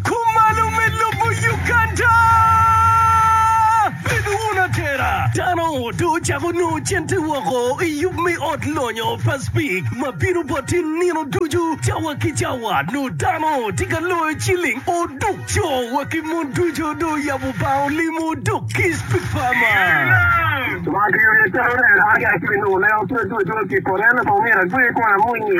Kumalo me lobo Uganda. Bed wun atera. Dano dong ocako nongo cente woko i yub me ot lonyo pa Speke ma bino bot i nino ducu cawa ki cawa. Nongo dano tye ka loyo ciling oduk. Co wa ki mon ducu dong oyabo bar olim oduk ki Speke pa ma. Wang aye tero neno, aa ki acel nongo leo tut tut tut ki i poto, en nongo pe omyero agwe kong amwony-nyi.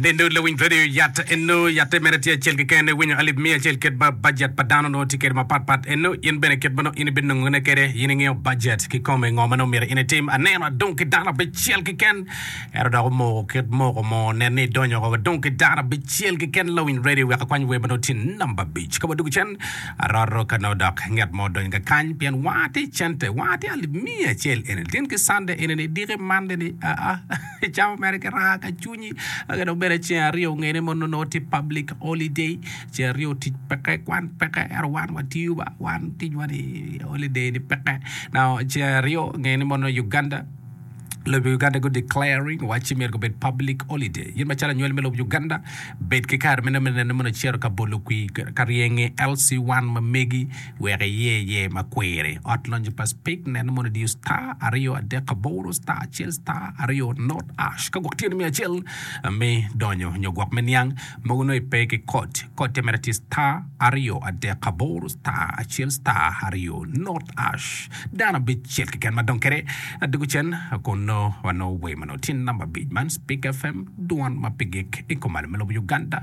Bene dong lawiny radio yat eno yatte mere tye acel keken iwinyo alip miya acel kit ma budget pa dano nongo tye kede ma pat pat eno in bene kit manongo in ibino nongo ne kede in ingiyo budget ki kome ngo manongo myero in itim aneno adong ki dano abicel keken ero dok omoko kit moko mo nen ni idonyo wa wadong ki dano abicel keken lawiny radio wek akwany wer manongo tye number abic ka wadugu cen aroto ka nongo dok nget mo odonyo ka kany pien wanga tye cente wanga tye alip miya acel eni tin ki Sunday eni ni diki Monday ni aa Cawa mere kiraa ka cwinyi aka dong bene ceng aryo ngene mono nongo tye public holiday ceng aryo tic peke kwan peke ento wan watiyo ba wan ticwa ni holiday ni peke now ceng aryo ngene mono Uganda lobo Uganda gu declaring wacci myero gubed public holiday in macalo anywali me lobo Uganda bed ki kare meno me neno mono icito ka bolo kwir ka ryenge LC1 ma megi wek iye iye ma kwiri. Ot lonyo pa Speke neno mono idiyo star aryo adek aboro star acel star aryo not ash ka gwok tye ni miyo acel me donyo nyo gwok me niang mogo nongo ipe ki code code tye mere tye star aryo adek aboro star acel star aryo not ash dano abic cel keken ma dong kede adiko cen kun nongo wanongo wer manongo tye namba abic man Speke FM dwan ma pe gik ikomalo me lobo Uganda.